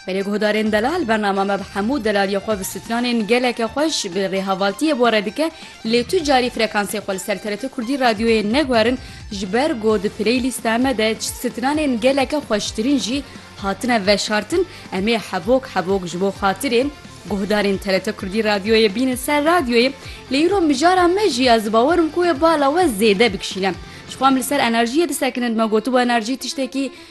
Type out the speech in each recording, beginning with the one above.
Belê guhdarên delal bernama me bi hemû delaliyê xwe bi stranên geleke xweş bi rêhevaltiyê bore dike lê tu carî frekansê xwe li ser TRT Kurdî radyoyê neguherin ji ber ku di playlîsta me de stranên geleke xweştirîn jî hatine veşartin em ê hebok hebok ji bo xatirê guhdarên TRT Kurdî radyoyê bînin ser radyoyê lê îro mijara me jî ez bawer im ku wê bala we zêde bikişîne ji xwe em li ser enerjiyê disekinin me gotibû enerjî tiştekî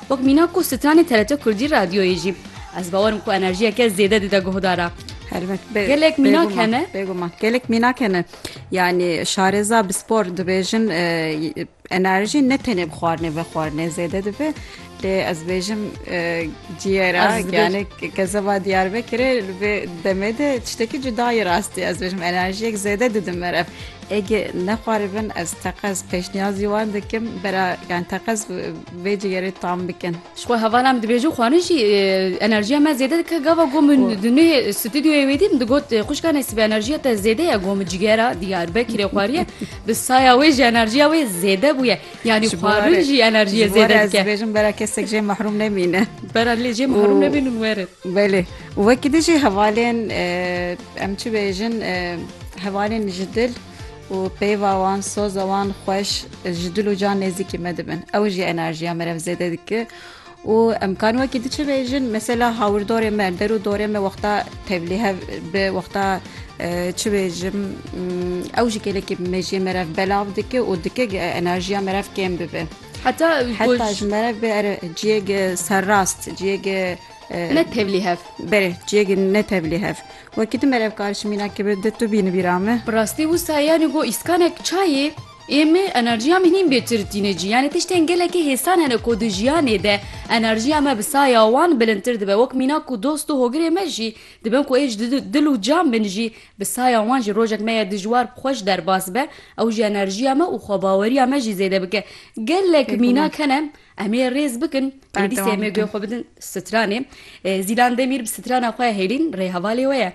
Wek mîna ku stranê TRT Kurdî radyoyê jî. Ez bawer im ku enerjiyeke zêde dide guhdara. Helbet bê Gelek mînak bêguman, hene. Bêguman. Gelek mînak hene. Yanî şarêza bi spor dibêjin e, enerjî ne tenê bi xwarinê ve xwarinê zêde dibe. Lê ez bêjim e, ciyêra Ez dibêjim. yani kezeba Diyarbekirê li vê demê de tiştekî cudayî rastî ez bêjim enerjiyek zêde didim ev. Ege nexwaribin ez teqez pêşniyazî wan dikim bera yani teqez vê cigêrê tam bikin. Ji xwe hevalan min dibêjin xwarin jî enerjiya me zêde dike gava got min di nû stûdyoyê wê dî min digot xwişka nesîbe enerjiya te zêde ye got min cigera diyarbekirê xwariye bi saya wê jî enerjiya wê zêde bûye yanî xwarin jî enerjiye zêde dike bêjin bera kesek jê mahrum nemîne bera lê jê mahrum nebînin werin. Belê. Wekî din jî hevalên em çi bêjin hevalên ji dil û peyva wan soza wan xweş ji dil û can nêzîkî me dibin. Ew jî enerjiya me re zêde dike. û em kan wekî di çi bêjin mesela hawirdorê me der û dorê me wexta tevlî hev bi wexta çi bêjim ew jî gelekî mejiyê me re belav dike û dike enerjiya me re kêm bibe. Heta ew ku Heta ji meriv bê ere ciyek serrast, ciyek ne tevlî hev. Berê ciyek ne tevlî hev. Wekî tu meriv kar ji mînakê bi di tu bîni bîra me. Bi rastî wisa yanî ku îskanek çayê ê me enerjiya me nîn bêtir tîne cî. Yanî tiştên gelekî hêsan hene ku di jiyanê de enerjiya me bi saya wan bilindtir dibe. Wek mînak û dost û hogirê me jî dibin ku ê ji dil û can bin jî Bi saya wan jî rojek me ye dijwar bi xwe ji derbas be, ew jî enerjiya me û xwebaweriya me jî zêde bike. Gelek mînak hene em ê rêz bikin, pêwîste em ê guya xwe bidin stranê. Zîlan Demîr bi strana xwe hêlîn rê hevalê we ye.